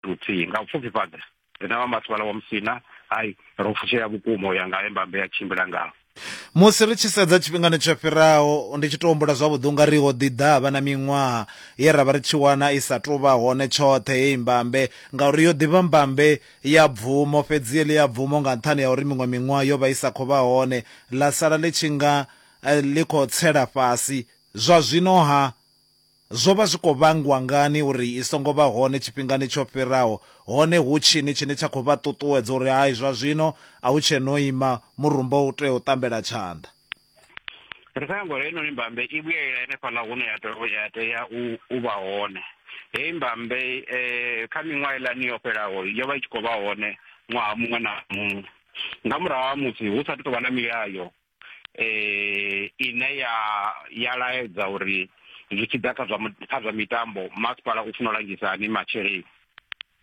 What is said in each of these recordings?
luthihi nga u pfufhifhadza riṋe vha masipala wa musina hai ro fushea vhukuma u ya nga he mbambe ya tshimbila ngaho musi ri tshi sedza tshifhingani tsho fhiraho ndi tshi tou humbula zwavhuḓi unga ri ho ḓi ḓa vha na miṅwaha ye ra vha ri tshi wana i sa tou vha hone tshoṱhe heyi mbambe ngauri yo ḓivha mbambe ya bvumo fhedzi ye ḽi ya bvumo nga nṱhani ya uri miṅwe miṅwaha yo vha i sa khou vha hone ḽa sala ḽi tshi nga eh, ḽi khou tsela fhasi zwa zwino ha Zwo vha zwi khou vhangwa ngani uri i songo vha hone tshifhingani tsho fhiraho, hone hu tshini tshine tsha khou vha ṱuṱuwedza uri hai zwa zwino a hu tshe no ima murumba u tea u ṱambela tshanḓa? Ri khou nyanga uri heinoni mbambe i vhuyelele henefhaḽa hune ya tou ya tea u u vha hone. Heyi mbambe kha miṅwaha heiḽani yo fhelaho yo vha i tshi khou vha hone ṅwaha muṅwe na muṅwe nga murahu ha musi hu sa athu tou vha na milayo eh ine ya ya laedza uri zwi tshi ḓa kha zwa kha zwa mitambo masipala u funa u langisa hani masheleni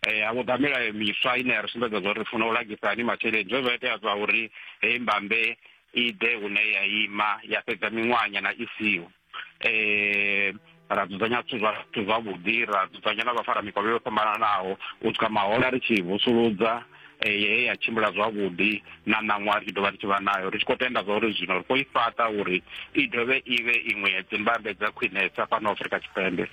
eh a vhuḓa milayo miswa ine ya ri sumbedza zwa uri funa u langisa hani masheleni zwe zwa itea zwa uri heyi mbambe i ḓe hune ya ima ya fhedza miṅwahanyana i siho eh ra dzudzanya zwithu zwithu zwavhuḓi ra dzudzanya na vhafara mikovhe yo fhambananaho u swika mahola ri tshi vusuludza eh, ye ya tshimbila zwavhuḓi na ṋaṅwaha ri tshi dovha ri tshi vha nayo ri tshi khou tenda zwa uri zwino ri khou i fhaṱa uri i dovhe i vhe iṅwe ya dzimbambe dza khwinesa fhano afurika tshipembe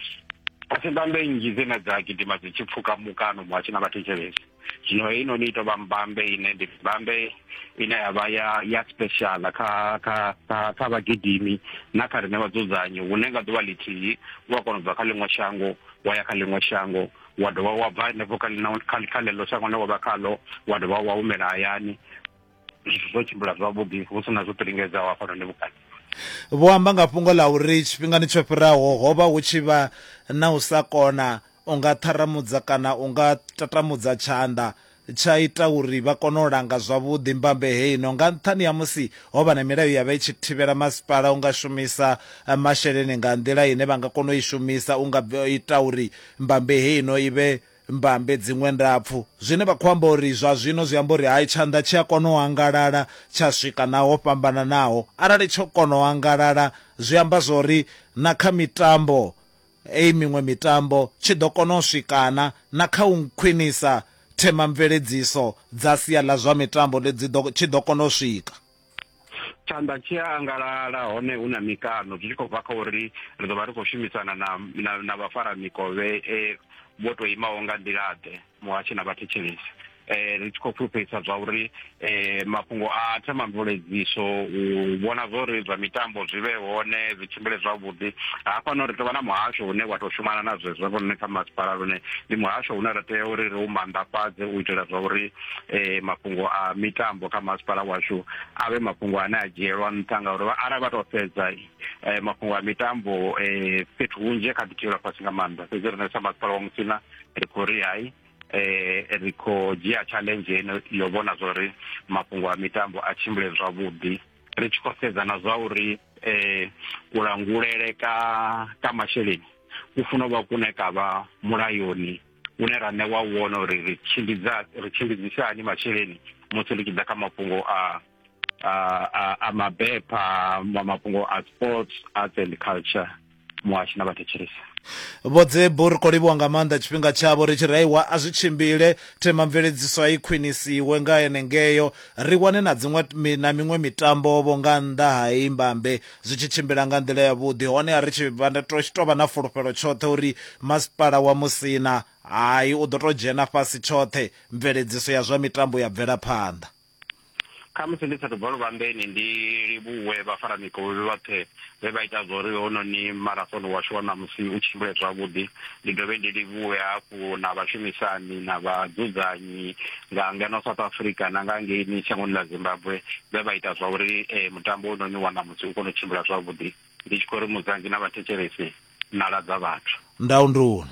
a si mbambe nnzhi dzine dza gidima dzi tshi pfuka mukano muhasho na vhathetshelesi zwino heinoni i tou vha mbambe ine ndi mbambe ine ya vha ya ya special kha kha kha kha vhagidimi na kha riṋe vhadzudzanyi hune nga ḓuvha ḽithihi u a kona u bva kha ḽiṅwe shango wa ya kha ḽiṅwe shango wa dovha wa bva henefho kha kha ḽeḽo shango ḽe wa vha khaḽo wa dovha wa humela hayani zwithu zwo tshimbila zwavhuḓi hu si na zwo ṱilingedzaho hafhanoni vhukati vho amba nga fhungo ḽa uri tshifhingani tsho fhiraho ho vha hu tshi vha na u sa kona U nga ṱharamudza kana u nga tatamudza tshanḓa tsha ita uri vha kone u langa zwavhuḓi mbambe heino. Nga nṱhani ha musi ho vha na milayo ya vha i tshi thivhela, masipala u nga shumisa masheleni nga nḓila ine vha nga kona u i shumisa u nga ita uri mbambe heino i vhe mbambe dziṅwe ndapfu. Zwine vha khou amba uri zwa zwino zwi amba uri hai tshanḓa tshi a kona u angalala tsha swika na ho fhambananaho. Arali tsho kona u angalala zwi amba zwa uri na kha mitambo Hei miṅwe mitambo tshi ḓo kona u swikana na kha u khwinisa themamveledziso dza sia ḽa zwa mitambo ḽi dzi ḓo tshi ḓo kona u swika. Tshanḓa tshi a angalala hone hu na mikano zwi tshi khou bva kha uri ri ḓo vha ri khou shumisana na na na vhafaramikovhe vho tou imaho nga nḓila-ḓe. muhasho na vhathetshelesi eh ri tshi khou fhulufhedzisa zwa uri eh mafhungo a themamveledziso u vhona zwa uri zwa mitambo zwi vhe hone zwi tshimbile zwavhuḓi hafhano ri tou vha na muhasho une wa tou shumana na zwezwo vhone kha masipala lune ndi muhasho une ra tea uri ri u manḓafhadze u itela zwa uri eh mafhungo a mitambo kha masipala washu a vhe mafhungo ane a dzhielwa nṱha ngauri arali vha tou sedza eh mafhungo a mitambo eh fhethu hunzhi kha ḓi thivhelwa fhasi nga maanḓa fhedzi rine sa masipala wa musina ri khou ri hai eh ri khou dzhia challenge ino yo vhona zwa uri mafhungo a mitambo a tshimbile zwavhuḓi ri tshi khou sedza na zwa uri eh kulangulele ka ka masheleni ku funa u vha kune ka vha mulayoni une ra ṋewa wone uri ri tshimbidza ri tshimbidzisa hani masheleni musi ri tshi ḓa kha mafhungo a a mabepha ma mafhungo a sports arts and culture muhashi na vhathetshelesa vhodzebo ri khou livhuwa nga maanḓa tshifhinga tshavho ri tshi raiwa a zwi tshimbile themamveledziso a i khwinisiwe nga enengeyo ri wane na dziṅwe na miṅwe mitambo-vho nga nnḓa ha i mbambe zwi tshi tshimbila nga nḓila yavhuḓi hone a ri tshi tou vha na fulufhelo tshoṱhe uri masipala wa musina hai u ḓo tou dzhena fhasi tshoṱhe mveledziso ya zwa mitambo ya bvela phanḓa khamusi ndi sathu bva luvhambeni ndi livhuwe vhafara mikovhe vhoṱhe vhe vha ita zwa uri hononi marathon washu wa ṋamusi u tshimbile zwavhuḓi ndi dovhe ndi livhuwe hafhu na vhashumisani na vhadzudzanyi nga ngeno south africa na nga ngeini shangoni ḽa zimbabwe vhe vha ita zwa uri eh, mutambo hononi wa ṋamusi u kone u tshimbila zwavhuḓi ndi tshi khou ri muzanzi na vhathetshelesi na ladza vhathu ndaunduna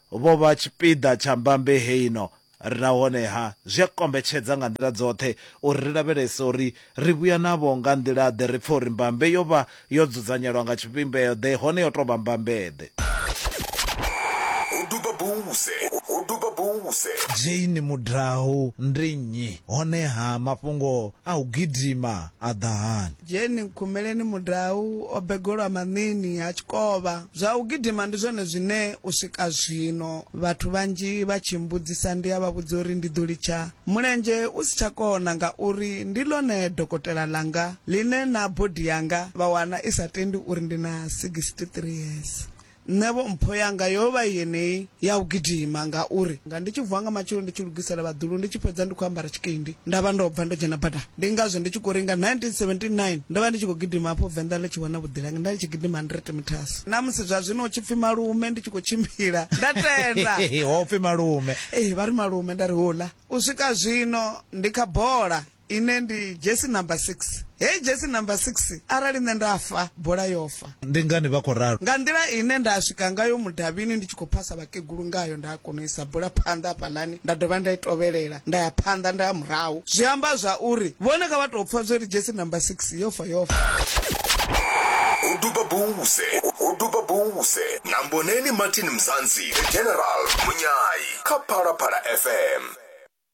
vho vha tshipiḓa tsha mbambe heino nahone-ha zwi a kombetshedza nga nḓila dzoṱhe uri ri lavhelese uri ri vhuya navho nga nḓila-ḓe, ri pfe uri mbambe yo vha yo dzudzanyelwa nga tshivhimbeo-ḓe hone yo tou vha mbambe-ḓe. Ho duba buse, ho duba buse. Jane Mudau ndi nnyi, hone-ha mafhungo a u gidima a ḓa hani? Dzheni nkhumeleni mudau o begolwa maṋini ha tshikovha. Zwa u gidima ndi zwone zwine u swika zwino vhathu vhanzhi vha tshi mmbudzisa ndi a vha vhudza uri ndi ḓo litsha mulenzhe u si tsha kona ngauri ndi ḽone dokotela ḽanga ḽine na body yanga vha wana i sa tendi uri ndi na 63 years. Nṋevho mpho yanga yo vha yeneyi ya u gidima, ngauri nga ndi tshi vuwa nga matsheloni ndi tshi lugisela vhaḓulu, ndi tshi fhedza ndi khou ambara tshikendi nda vha ndo bva ndo dzhena badani. Ndi ngazwo ndi tshi khou ri nga 1979 ndo vha ndi tshi khou gidima hafho Venḓa ḽi tshi wana vhuḓilangi, nda ndi tshi gidima 100 metres. Na musi zwa zwino hu tshi pfi malume ndi tshi khou tshimbila, nda tenda. Ho pfi malume? Ee, vha ri malume, nda ri hola. U swika zwino ndi kha bola. ine ndi jesi number 6 hei jesi number 6 arali nṋe nda fa bola yo fa ndi ngani vha khou ralo nga nḓila ine nda swika ngayo mudavhini ndi tshi khou phasa vhakegulu ngayo nda kona u isa bola phanḓa hafhaḽani nda dovha nda i tovhelela nda ya phanḓa nda ya murahu zwi amba zwa uri vhone kha vha tou pfha zwo ri jesi number 6 yo fa yo fa o duba buse o duba buse na mboneni martin mzansi the general munyayi kha phalaphala fm